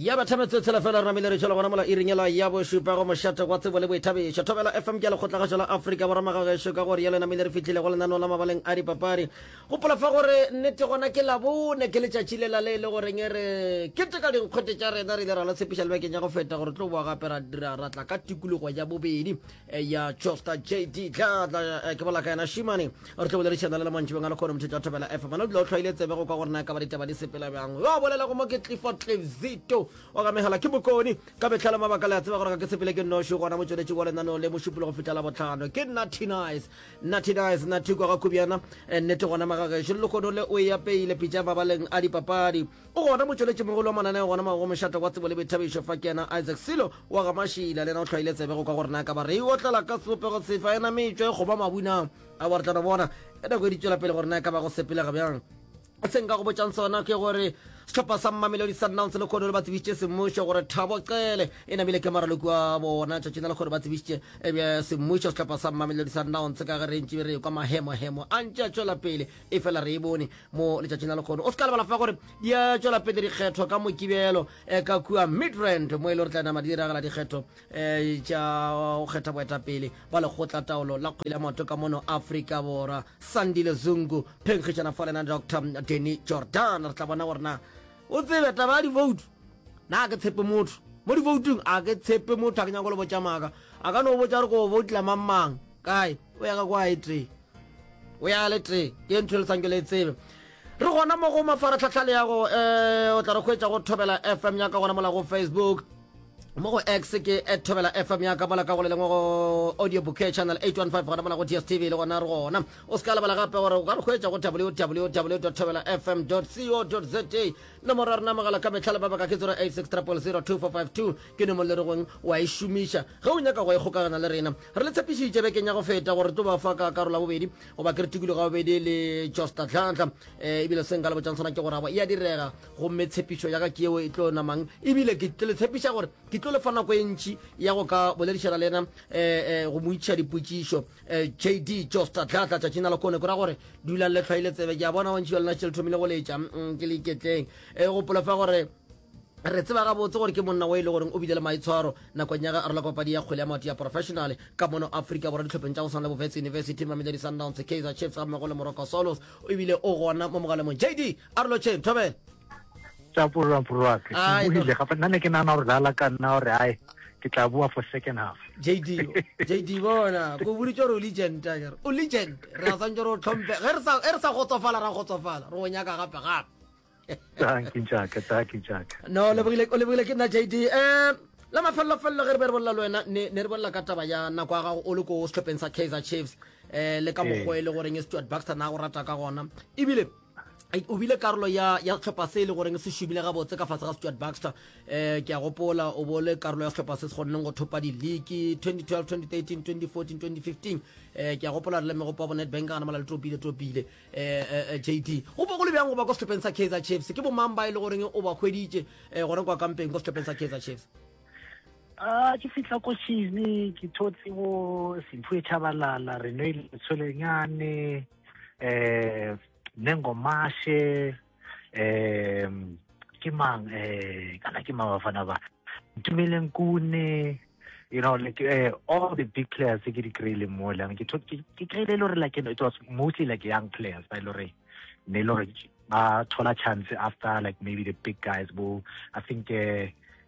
ya batha metsotshela fela re namile re tšwela gona mola iringela ya bošupa go mošate wa tsebo le boithabišo thobela fm ke ya lekgotlagašo la afrika boramaga gešo ka gore ya le namile re fitlhile go lenaneo la mabaleng a dipapadi gopola fa gore nnete gona ke labone ke letšatši lela le e le goreng e re keteka dinkgwete tša rena re ile ra la tshepiša lebekeng ya go feta gore tlo boa gape ra dira ratla ka tikologo ya bobedi ya costa jd tla tla eh, ke bola ka yena shimane re tlo boledišana le le mantši bengale kgone motho tša thobela fm ana o dula o tlhwaile tsebe go ka gore na ka ba ditaba di sepela bjang yo a bolelago mo ke clifford clifzito wa ka megala ke bokone ka metlhale mabaka le a tseba gore ga ke sepele ke noši gona motsweletši wa lenaneo le mošupolo go fihla la botlhano ke natinice natinice nathiko ga khubyana eh, nnete gona magagešo le lekgono le o e apeile pitša mabaleng a dipapadi O gona motšweletšimogolo wa mananeo gona mo go mošata wa tsebo le boithabišo fa ke yena Isaac Silo wa ga Mašila le yena o hlwaile tsebe go kwa gore na ka ba re e otlela ka sebopego sefe a e nametšwa e kgoba mabu na a ba re tla no bona e nako e di tšwela pele gore na e ka ba go sepelega bjang se nka go botšang sona ke gore sehlopha sa mmamelodi sundowns le kgono le ba tsebišitše semmušo gore thabo qele e namile ke maraloko a bona tšatšing la lekgono ba tsebišitše ebe semmušo sehlopha sa mmamelodi sundowns ka ge re ntši re kwa mahemohemo a ntše a tšwela pele e fela re e bone mo letšatšing la lekgono o se ka lebala fa gore di a tšwela pele dikgetho ka mokibelo eh, ka kua midrand mo e le gore tla nama di diragala dikgetho um eh, tša go kgetha boetapele ba lekgotla taolo la kgwele ya maoto ka mono aforika borwa sandile zungu phenkgišana fa lena dr denny jordan re tla bona gore na o tsebe taba ya divoutu na ke tshepe motho mo divoutong a ke tshepe motho a ke nyako le botša maaka a ka no botša gore ko boutla mang mang kae o ya ka kwa e tee o ya le tee ke ntho e le sanke le tsebe re gona mo go mafaratlhatlha le yago um eh, o tla re kgwetsa go thobela fm ya ka gona mola go facebook mo go x ke at thobela fm ya ka mola ka go le lengwe go audio bouquet channel 815 gona mola go dstv le gona re gona o se ka lebala gape gore o ka re kgwetsa go www thobela fm co za nomoro ya rena mogala ka metlhale ba baka ke 086 ke nomoro le re gong wa e šomiša ge o nyaka go e kgokagana le rena re le tshepišitše bekeng ya go feta gore tlo ba fa ka karola bobedi goba ke re tikologo ya bobedi le josta tlhantlha um eh, ebile se nka le botšang sona ke gore abo e a direga gomme tshepišo ya ka ke eo e tlo namang ebile ke tlo le tshepiša gore ke tlo le fa nako e ntši ya go ka boledišana le ena um go mo itšha dipotšišo jd josta tlhantlha tšatšing la lekone kora gore dulang le tlhwaile tsebe ke a bona bantši ba lena tšeletho mile go letša mm, ke le iketleng um gopola fa gore Re tseba gabotse gore ke monna o e le goreng o bile le maitshwaro nakong ya ge a rola ka papadi ya kgwele ya maoto ya professional ka mono Afrika Borwa ditlhopheng tša go swana le Bovets University, Mamelodi Sundowns, Kaizer Chiefs ga mmogo le Morocco Swallows. O ebile o gona mo mogalomong. JD a re lotšheng, Thobela. Tša purwa purwa ke buhile gape nna ne ke nana gore lala ka nna gore ai ke tla bua for second half JD JD bona go buri tšore o legend tagere o legend re a tsantšore o tlhompe ge re sa ge re sa gotsofala ra gotsofala re o nyaka gape gape no lebogile o lebogile ke nna jd um eh, la mafellofello ge re be re bolela le wena ne re bolela ka taba ya nako ya gago o le ko setlhopheng sa kaizer chiefs um le ka mokgwa e le goreng e stewart baxter na go rata ka gona ebile o bile karolo ya ya setlhopha se e le goreng se šomile gabotse ka fatshe ga stewart baxter um ke a gopola o bole karolo ya setlhopha se se kgonneng go thopa di-league 2012 2013 2014 2015 um ke a gopola re le megopo ya bo netbank gana mala le tropile tropile um jd go bo go le bjang go ba kwa sehlopeng sa kaizer chiefs ke bomang ba e le goreng o ba hweditše um gona kwa kampeng kwa sehlopeng sa kaizer chiefs a ke fitlha ko chile ke thotse bo sempho e tšhabalala re no e letshwelenyane um nengomashe um ke mang um kana ke mang bafana ba ntumeleng kune you know like uh, all the big players ke di kry-ile mo lane ke kry-ile le gore like it was mostly like young players ba e le gore ne e le gore ba thola chance after like maybe the big guys bo i think uh,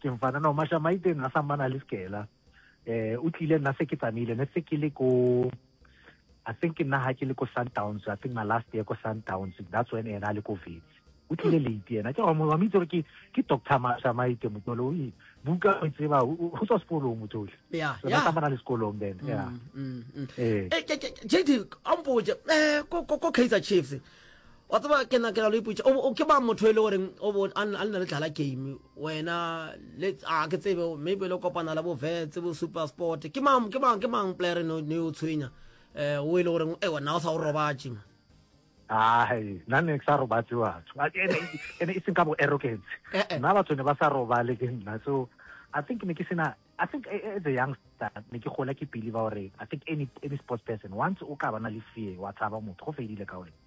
ke mfanana wa mashamaite nna sammana le sekela um o tlile nna se ke tsamaile ne se ke le ko i think nna ha ke le ko sundowns i think my last year ko sundowns that's when ena a le ko vets o tlile late yena ke wa mo itse gore ke ke doctor mashamaite motolo o buka o tseba o tswa sekolong motolo yeah yeah ka mana le sekolong then mm, yeah mm, mm. eh, eh JD ampoje eh ko ko Kaizer Chiefs wa tsaba ke na ke la lo iputsa o ke ba motho e le gore o bo a nna le tlala game wena le a ke tsebe maybe le kopana la bo vets bo super sport ke mang ke mang ke mang player no ne o tshwenya eh o ile gore e eh, wena o sa o robatše ma ai nna ne ke sa robatse batho ene e seng ka bo arrogance eh, eh. nna batho ne ba sa robale ke nna so i think ne ke sena i think as a youngster ne ke gola ke pele ba gore i think any any sports person once o ka ba na le fear wa tshaba motho go fedile ka wena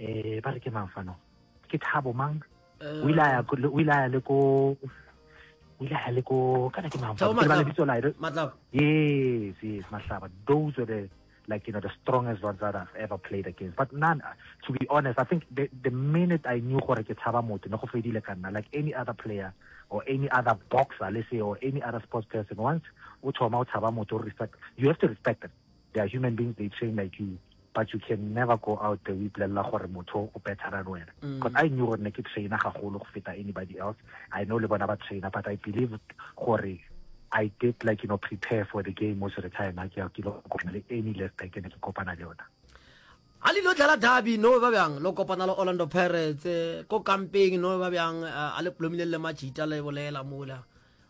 um ba re ke mang fano ke thabo mang o ile a ya le ko o ile a le ko kana ke mang fano ba lebitso la yes yes mahlaba those were the like you know the strongest ones that I've ever played against. But none, to be honest, I think the, the minute I knew gore ke tshaba motho ne go fedile ka nna like any other player or any other boxer let's say or any other sports person once o thoma o tshaba motho respect you have to respect them They are human beings, they train like you, but you can never go out there o ipolelela gore motho o better than wena. Mm. Because I knew gore ne ke trainer gagolo go feta anybody else. I know le bona ba trainer, but I believed gore I did like you know prepare for the game was retire na ke ke lo kopana le any left back ne ke kopana le yona. a le lo dlala derby no ba bjang lo kopana le Orlando Pirates eh, ko camping no ba bjang eh, a le plomile le machita le bolela mola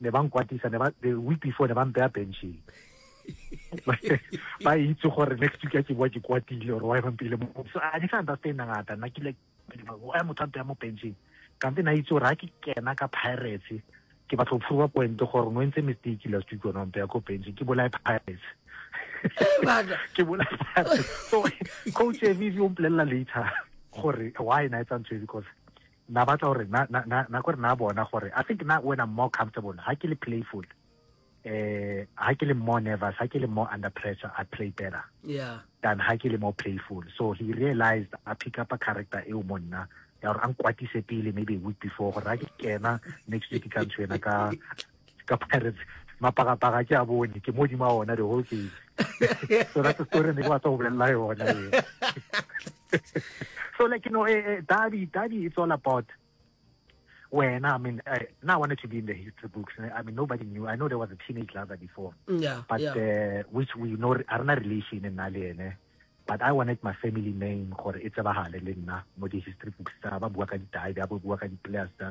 ne ba nkwatisa ne ba the week before ne ba mpeya benching ba itse gore next week ya ke bua ke kwatile or why bampile mo so a ne sa understand ngata nna ke le why motho ampe ya mo benching kampe na itse gore ha ke kena ka pirates ke batla go phuruba point gore no ntse mistake last week ona mpe ya ko benching ke bolae pirates ke bolae pirates so coach evi o mpolelela later gore why na etsa ntho e because Na batla gore na na na na gore na bona gore I think na when I'm more comfortable ha ke le playful eh ha ke le more nervous ha ke le more under pressure I play better yeah than ha ke le more playful so he realized I pick up a character eo mo nna ya gore a nkwatise pele maybe a week before gore ha ke kena next week ka ntsho ena ka ka pirates mapagapaga ke a bone ke modima ona the whole game so that's the story ne ke batla go bolelela yona so like you know eh, eh, daddy daddy it's all about wena i mean I, now i wanted to be in the history books i mean nobody knew i know there was a teenage lover before yeah, but yeah. Uh, which we know are not relation in nale but i wanted my family name gore e tsebagale le nna mo di-history books tsa ba bua ka ditae ba bua ka di-players tsa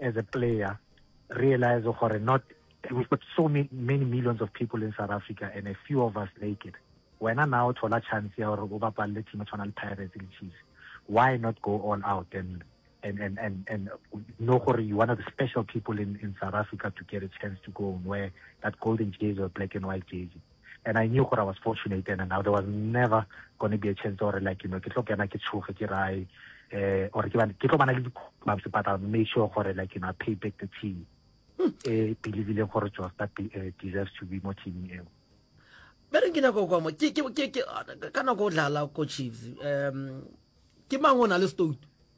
as a player realize gore not we've got so many, many millions of people in south africa and a few of us make it wena na o thola chance ya gore o bapalele team e tshwana le pirates le chiefs why not go all out and and and and, and know gore you one of the special people in, in south africa to get a chance to go and wear that golden jersey or black and white jersey and I knew gore I was fortunate and now there was never gonna be a chance gore like you know ke tlo kena ke tshoge ke rae eh or ke ke tlo bana le dikhumampse but I'll make sure gore like you know I pay back the team hmm. eh believe le gore Josta eh, deserves to be mo teaming eo ba re ke nako kwa mo ke ke ke ka nako o dlala ko Chiefs um ke mang o na le stout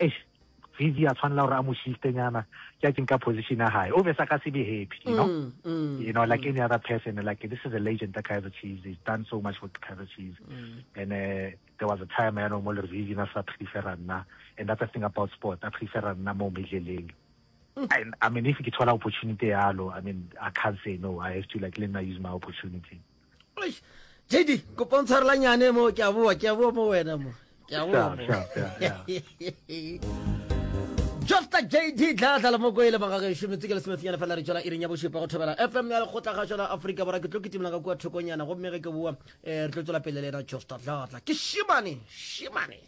eish Vivi a tshwanela gore a mo shistenyana judging ka position ya hae o be sa ka se be happy you know mm, mm, you know like mm. any other person like this is a legend the Kaizer Chiefs he's done so much for Kaizer Chiefs mm. and uh, there was a time I know mo le Vivi na sa prefer nna and that's the thing about sport I prefer nna mo medleleng mm. and I mean if ke thola opportunity yalo I mean I can't say no I have to like let me use my opportunity JD, kopa ntshwarela nyane mo ke a boa ke a boa mo wena mo ke a boa mo Jofta JD tla tla mo koele banga ga shome tsikele se metsinyana fela re tšola iring ya bošepa go thobela FM ya lekgotla ga tšola Afrika bora ke tlo kitimela ka kwa thokonyana go mmege ke boa eh, re tlo tšola pele le ena Jofta tla tla ke shimane shimane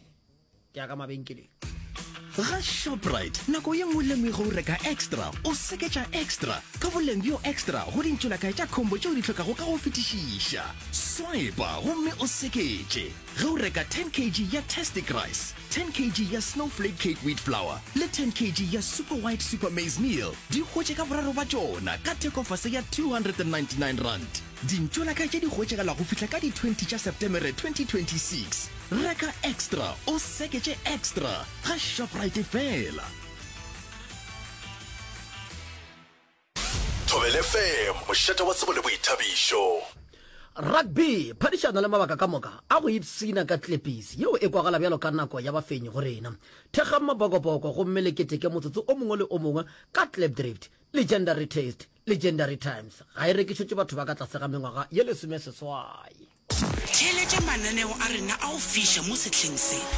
ke ya ka mabenkeleng ga shoprite nako ye nngwe le nngwe o reka extra o seketša extra ka boleng bjo extra go dintšolakae tša khombo tšeo di tlhokago ka go fetišiša swipa gomme o seketše ge o reka 10 kg ya testic rice 10 kg ya snowflake cake wheat flour le 10 kg ya super white super maize meal di hwetše ka boraro ba tšona ka thekofase ya 299 rand Dintšo la ka tše di hwetšagala go fihla ka di 20 tša Septemere 2026. Reka Extra o seke tše Extra ga Shoprite fela. Thobel FM, mošate wa tsebo le boithabišo. Rugby, phadišano le mabaka ka moka a go ipshina ka tlepisi yeo e kwagala bjalo ka nako ya bafenyi go rena. Thekgang mabokoboko gomme le keteke motsotso o mongwe le o mongwe ka Klipdrift, Legendary Taste. Legendary Times ga e rekišetše batho ba ka tlase ga mengwaga ye lesomeseswai. Theeletša mananeo a rena a go fiša mo sehleng se.